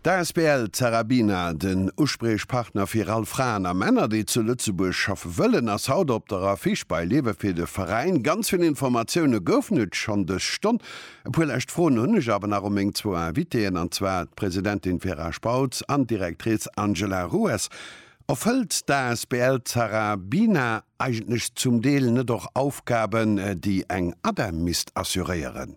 D'asbl Zarabina, den Uspriechpartner fir all Fraen a Männer, déi zu Lëtzebuerg schaffe wëllen, ass haut op der Affiche bei Lewe fir de Veräin. Ganz vill Informatioune goufen et schonn dës Stonn. E puer lescht Froen hunn ech awer nach u meng zwou Invitéeën, an zwar d'Presidentin Vera Spautz an d'Directrice Angela Rues. Erfëllt d'asbl Zarabina eigentlech zum Deel net och Aufgaben, déi eng ADEM misst assuréieren?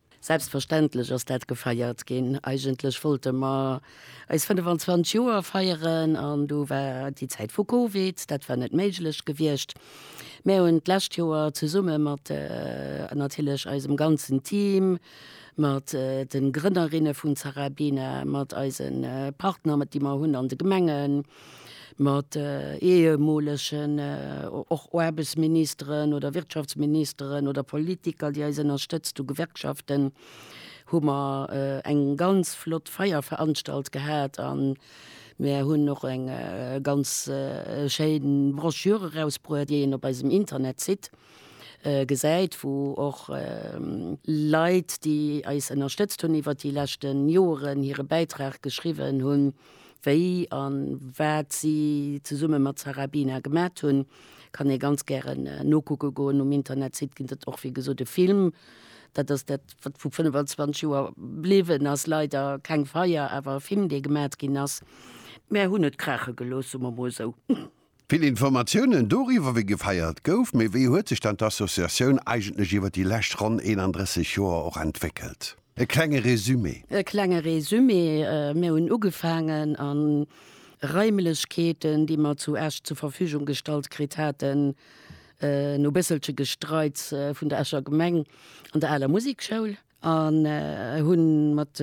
Selbstverständlech ass dat gefeiert ginn. Eigentlech wollte mer eis 25 Joer feieren an du war déi Zäit vu Covid, dat war net méiglech gewiescht. Mär hunn d'lescht Joer zesumme mat natierlech eisem ganzen Team, mat de Grënnerinne vun Zarabina, mat eise Partner, déi mer hunn an de Gemengen, mat ehemoolegen och Aarbechtsministeren oder Wirtschaftsministeren oder Politiker, déi eis ënnerstëtzt hu, Gewerkschaften, hu mer eng ganz flott Feier veranstalt gehat a mir hunn och eng ganz schéin Broschür erausbruet, déi een op eisem Internetsite gesäit, wou och Leit, déi eis ënnerstëtzt hunn iwwert déi leschten Joeren, hire Bäitrag geschriwwen hunn. Wéi an waat si zesummen mat Sarah Bina gemaat hun kann ee ganz gären nokucken goen. Um Internetsite gin et och wéi gesoot e Film. Daat ass daat waat vu 25 Joer bliwen ass. Leider keng Feier, awer e Film dee gemaat gin ass. Mär hun et kraachen gelooss, soen mer mol esou. Vill Informatiounen doriwwer, wéi gefeiert gouf, mee wéi huet sech dann d'Associatioun eigentlech iwwer déi lescht ronn 31 Joer och entwéckelt? E klenge Resumé. E klenge Resumé, Mir hunn ugefaangen a Raimlechkeeten, déi mer zu Esch zur Verfügung gestallt kritt haten, no bësselche Gestreits vun der Escher Gemeng, an der aler Musikschoul. An hunn mat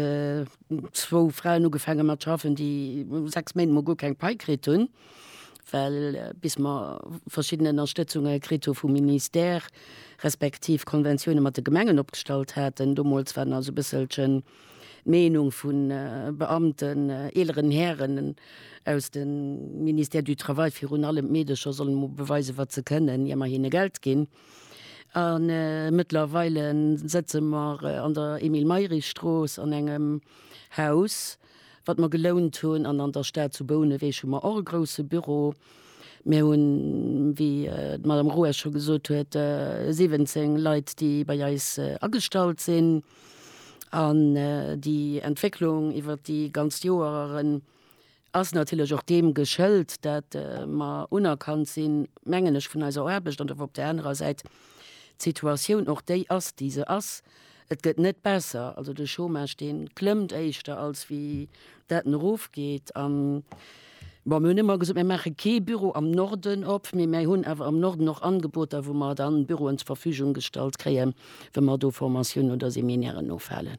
zwou Fraen ugefaangen mat schaffen déi 6 Méint mol guer keng Pai kritt hunn, well bis mer verschidden Ënnerstëtzunge kritt hu vum Ministère, respektiv Konventioune mat de Gemengen opgestallt haten. Domols war nach esou e bësselchen d'Meenung vu Beamten, eeleren Hären aus dem Ministère du Travail, virun allem d'Meedecher sollen emol beweisen wat se kënnen, ier mer hinne Geld ginn. A mëttlerweile sëtze mer an der Emile-Mayrisch-Strooss an engem Haus, wat mer gelount hunn. An an der Stad zu Bouneweg hu mer och e grousse Büro. Mir hunn, wéi d'Madame Ruesch scho gesot huet, 17 Leit, déi bei eis agestallt sinn an déi Entwécklung iwwert déi ganzt Joer Ass natierlech och deem geschëlt, dat mer unerkannt sinn, mengen ech, vun eiser Aarbecht an op där anerer Säit d'Situatioun och déi ass, déi se ass. Et gëtt net besser. Also de Chômage, dee klëmmt éischter, als wéi dat en erofgeet. An, bon, mir hunn ëmmer gesot, mir maache kee Büro am Norden op, mee mir hunn awer am Norden och Angeboter, wou mer dann Büroen zur Verfügung gestallt kréien, wou mer do Formatiounen oder Seminairen ofhalen.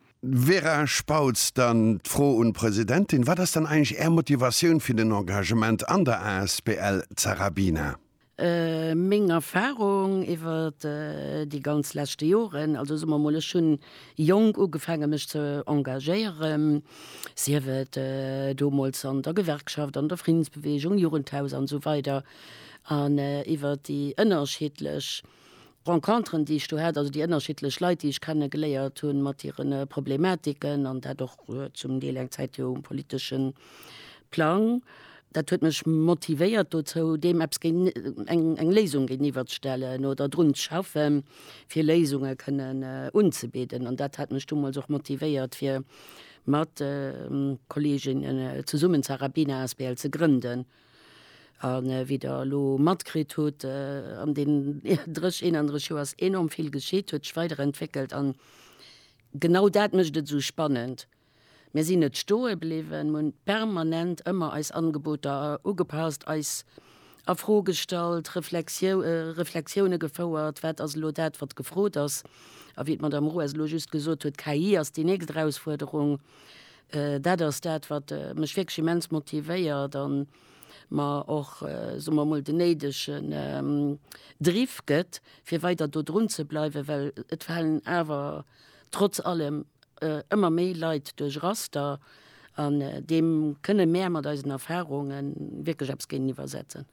Vera Spautz, Dann d'Fro un d'Presidentin, Wat ass dann eigentlech Är Motivatioun fir den Engagement an der asbl Zarabina? Meng Erfarung iwwer déi ganz leschte Joren, also soe mer mol, ech hunn jonk ugefaange mech ze engagéieren, sief et deemools an der Gewerkschaft, an der Friddensbeweegung, Jugendhaus an esou weider, an iwwer déi ënnerschiddlech Renconteren, déi ech do hat, also déi ënnerschiddlech Leit, déi ech kenne geléiert hunn, mat hire Problematiken an dat och zum Deel eng Zäit jo um politesche Plang, dat huet mech motivéiert dozou, deem eppes géint, eng Léisung géintiwwer ze stellen oder drun ze schaffe fir Léisunge kënnen unzebidden. An dat hat mech deemools och motivéiert fir mat Kolleginnen zesummen d'Sarah Bina asbl ze grënden. A wéi Der elo matkritt hutt, an deenen 30, 31 Joer ass enorm vill geschitt, huet sech weiderentwéckelt an genau dat mécht et esou spannend. Mir sinn net stoe bliwwen, mir hunn permanent ëmmer eis Angeboter ugepasst, eis a Fro gestallt, Reflexione gefouert, wat ass elo dat, wat gefrot ass. A wéi d'Madamm Ruas elo just gesot huet, KI ass déi nächst Erausfuerderung, Dat ass dat, wat mech wierklech immens motivéiert a mer och, soe mer emol, den néidegen Driff gëtt, fir weider do drunzebleiwen, well et falen awer trotz allem ëmmer méi Leit duerch Raster. An deem kënne mär mat eisen Erfarunge wierklech eppes géintiwwersetzen.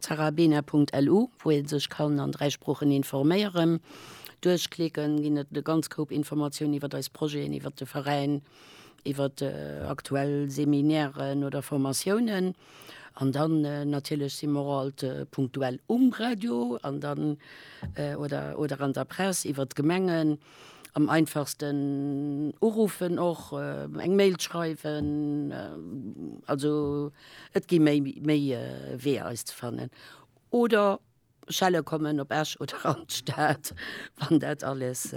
Zarabena.lu, wou ee sech kann an 3 Sproochen informéieren. Duerchklicken ginn et e ganz Koup Informatiounen iwwert eis Projeten, iwwert de Veräin, iwwert aktuell Seminairen oder Formatiounen. An dann natierlech si mer och alt punktuell um Radio an dann oder oder an der Press iwwert d'Gemengen. Am einfachsten uruffen och, eng Mail schreiwen, also et gi méi méi Weeër eis ze fannen. Oder schelle kommen op Esch oder an d'Stad, wann dat alles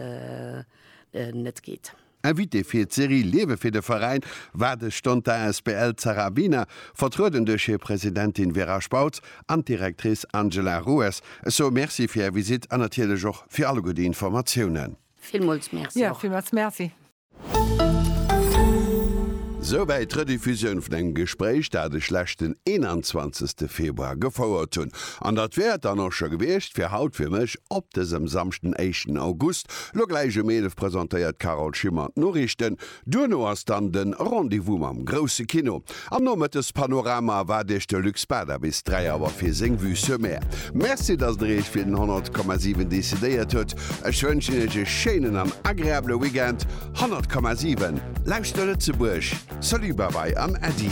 net geet. Invitée fir d'Serie Liewe fir de Veräin war de Stonter asbl Zara Wiener, vertrueden duerch hir Presidentin Vera Spautz an d'Directrice Angela Rues. Ech soe Merci fir Är Visitt an natierlech och fir alleguer déi Informatiounen. Villmools Merci och. Villmools Merci. Souwäit d'Rediffusioun vun engem Gespréich, dat ech leschten 21 Februar gefouert hunn. An dat wär et dann och scho gewiescht fir haut fir mech. Op dësem Samschden, éischten August, lo gläich um 11 presentéiert d'Carole Schimmer d'Noriichten. Duerno ass dann de Rendez-vous mam grousse Kino. Am Nomëttespanorama erwaart iech de Luc Spada bis 3 Auer fir seng Vue sur Mer. Merci, datt der iech fir den 100,7 decidéiert huet. Ech wënschen iech e schéinen an agreabele Weekend. 100,7, Lauschter Lëtzebuerg! Salut, Bye-bye an Äddi!